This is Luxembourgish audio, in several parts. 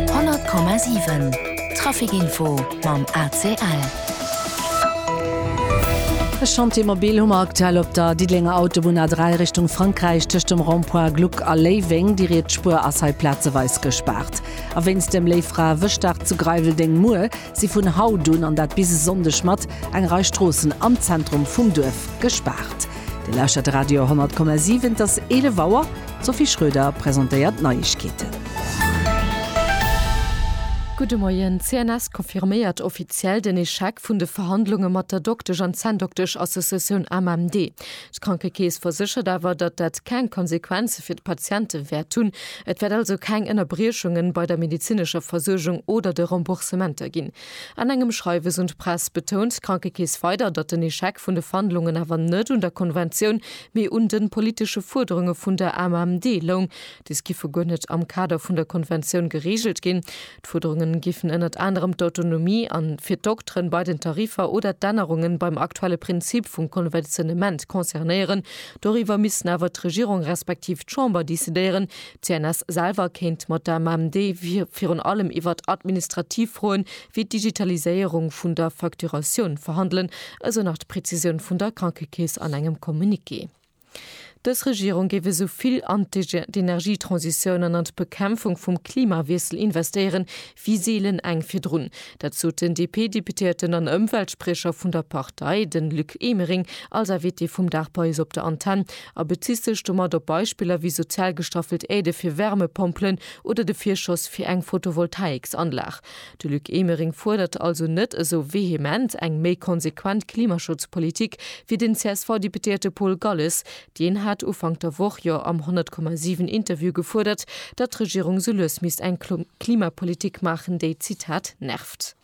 100,7 Trafic Info mam ACL. E Chantier mobil hu mer aktuell op der Diddelenger Autobunn A3 Richtung Frankräich tëscht dem Rond-point Gluck a Léiweng. Déi riets Spuer ass hei plazeweis gespaart. A wéinst dem Léifra-Wëschdag zu Greiweldéng muer, si vun haut un, an dat bis e Sonndeg, mat eng Rei Stroossen am Zentrum vum Duerf gespaart. Dir lauschtert de Radio 10,7, et ass 11 Auer, d'Sophie Schröder presentéiert d'Neiegkeeten. Gudde Moien, d'CNS confirméiert offiziell den Echec vun de Verhandlunge mat der Doktesch an Zänndoktesch-Associatioun AMMD. D'Krankekeess verséchert awer, datt dat keng Konsequenze fir d'Patiente wäert hunn. Et wäert also keng Ënnerbriechungen bei der medezinescher Versuergung oder de Remboursementer ginn. An engem Schreiwes un d'Press betount d'Krankekeess weider, datt den Echec vun de Verhandlungen awer net un der Konventioun, mee un de politesche Fuerderunge vun der AMMD loung. Dës giffe guer net am Kader vun der Konventioun gereegelt ginn. D'Fuerderunge giffen ënnert anerem d'Autonomie an fir d'Dokteren bei den Tarifer oder d'Ännerungen beim aktuelle Prinzip vum Konventionnement concernéieren, Doriwwer missten awer d'Regierung respektiv d'Chamber decidéieren. D'CNS selwer kéint mat der MMD virun allem iwwert administrativ Froen, wéi d'Digitaliséierung vun der Facturatioun, verhandelen, esou nach d'Prezisioun vun der Krankekeess an engem Communiqué. Dës Regierung géif esou vill an d'Energietransitioun an an d'Bekämpfung vum Klimawiessel investéieren, wéi seelen eng virdrun. Dat sot den DP-Deputéierten an Ëmweltspriecher vun der Partei, de Luc Emering, als Invité vum Dag bei eis op der Antenn a bezitt sech domat op Beispiller wéi sozial gestaffelt Aide fir Wärmepompelen oder de Virschoss fir eng Photovoltaïksanlag. De Luc Emering fuerdert also net esou vehement eng méi konsequent Klimaschutzpolitik wéi den CSV-Deputéierte Paul Galles, Deen hat Ufank der Woch jo am 100,7 Interview gefuerdert, datt d'Regierung sou lues misst eng Klimapolitik maachen, déi, Zitat, nervt.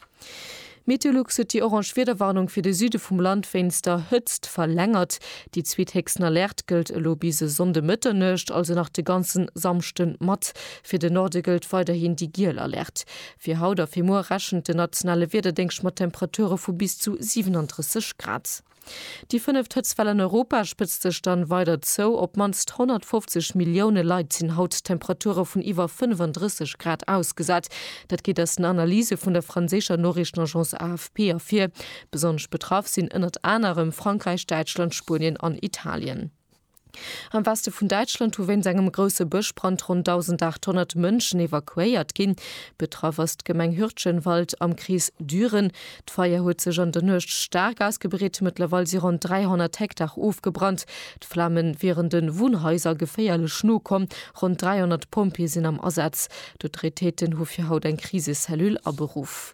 Meteolux huet déi orange Wiederwarnung fir de Süde vum Land wéinst der Hëtzt verlängert. Déi zweethéchsten Alerte gëllt elo bis e Sonnde Mëtternuecht, also nach de ganze Samschde mat. Fir de Norde gëllt weiderhin déi giel Alerte. Fir haut a fir muer rechent den nationale Wiederdéngscht mat Temperature vu bis zu 37 Grad. Déi fënneft Hëtztwell an Europa spëtzt sech dann weider zou. Op mannst 150 Millioune Leit sinn haut Temperature vun iwwer 35 Grad ausgesat. Dat geet aus den Analyse vun der franséischer Noriichtenagence AFP ervir. Besonnesch betraff sinn ënnert anerem Frankräich, Däitschland, Spuenien an Italien. Am Weste vun Däitschland hu wéinst engem grousse Bëschbrand ronn 1.800 Mënschen evakuéiert ginn. Betraff ass d'Gemeng Hürtgenwald am Krees Düren. D'Feier huet sech an der Nuecht staark ausgebreet. Mëttlerweil si ronn 300 Hektar ofgebrannt. D'Flame wieren de Wunnhaiser geféierlech no komm. Ronn 300 Pompjeeë sinn am Asaz. D'Autoritéiten hu fir haut eng Krisecellule aberuff.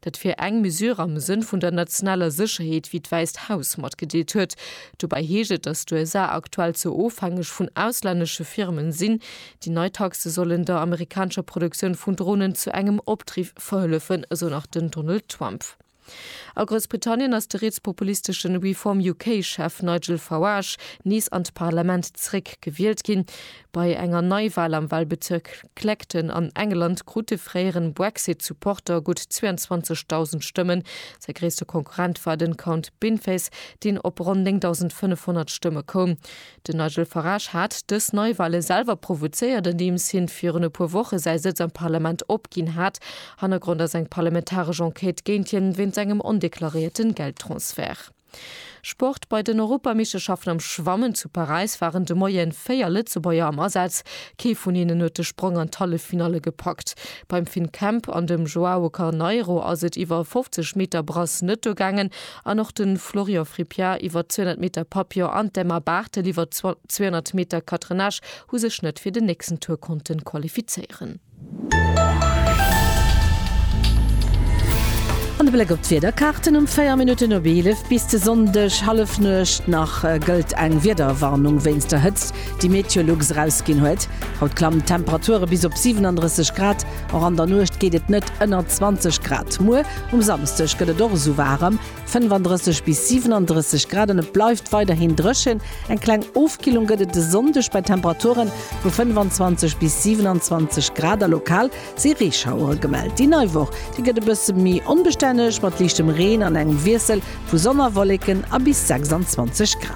Dat wier eng Mesure am Sënn vun der nationaler Sécherheet, wéi d'Wäisst Haus matgedeelt huet. Dobäi heescht et, datt d'USA aktuell ze ofhängeg vun auslännesche Firmen sinn. Déi nei Taxe sollen der amerikanescher Produktioun vun Dronen zu engem Opdriff verhëllefen, esou nach den Donald Trump. A Groussbritannien ass de rietspopulistesche Reform UK Chef Nigel Farage nees an d'Parlament zeréck gewielt ginn. Bei enger Neiwal am Walbezierk. Clacton an England krut de fréieren Brexit Supporter gutt 22.000 Stëmmen. Säi gréisste Konkurrent war den Count Binface, deen op ronn 9.500 Stëmme koum. Den Nigel Farage hat dës Neiwale selwer provozéiert, andeems hien virun e puer Woche säi Sëtz am Parlament opginn hat. Hannergrond ass eng parlamentaresch Enquête géint hien, wéinst engem ondeklaréierten Geldtransfert. Sport, Bei den Europameeschterschaften am Schwammen zu Paräis waren de Moie 4 Lëtzebuerger am Asaz. Kee vun hinnen huet de Sprong an d'Halleffinalle gepackt. Beim Finn Kemp an dem Joao Carneiro ass et iwwer 50 Meter Brasse net duergaangen an och de Florian Frippiart iwwer 200 Meter Papillon an d'Emma Barthel iwwer 200 Meter Catenage hu sech net fir den nächsten Tour konnte qualifizéieren. An de Bléck op d'Wiederkaarten, Um 4 Minutten op 11 bis de Sonndeg Hallefnuecht nach gëllt eng Wiederwarnung wéinst der Hëtzt, déi Meteolux erausginn huet. Haut klammen d'Temperature bis op 37 Grad, och an der Nuecht geet et net ënner 20 Grad. Muer um Samsdeg gëtt et och esou waarem. 35 bis 37 Grad an et bleift weiderhin dréchen. Eng kleng Ofkillung gëtt et e Sonndeg bei Temperaturen vu 25 bis 27 Grad a lokal si Reeschauere gemellt. Déi nei Woch, déi gëtt e bësse méi onbestänneg mat liichtem Reen an engem Wiessel vu Sonn a Wolleken a bis 26 Grad.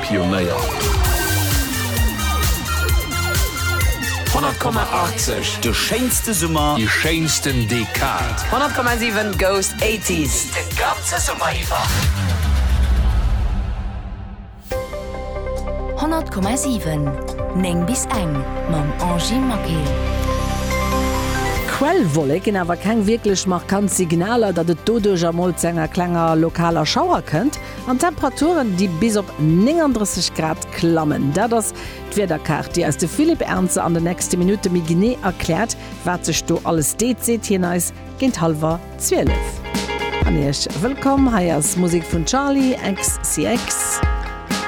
Pionéier. 100,80, De schéinste Summer. Déi schéinsten Dekad. 100,7, Ghost Eighties, De ganze Summer iwwer. 100,7, 9 bis eng, Mam Angie Maquet. Quellwollek ginn awer keng wierklech markant Signaler, datt et doduerjer mol zu enger klenger lokaler Schauer kënnt. An d'Temperaturen, déi bis op 39 Grad klammen. Dat ass d'Wiederkaart, déi eis de Philippe Ernzer an den nächste Minutte méi genee erkläert, wat sech do alles deet, seet hien eis géint hallwer 12. An Iech wëllkomm, hei ass Musek vun Charli XCX,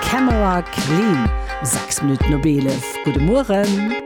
Camera Clean, 6 Minutten op 11. Gudde Mueren.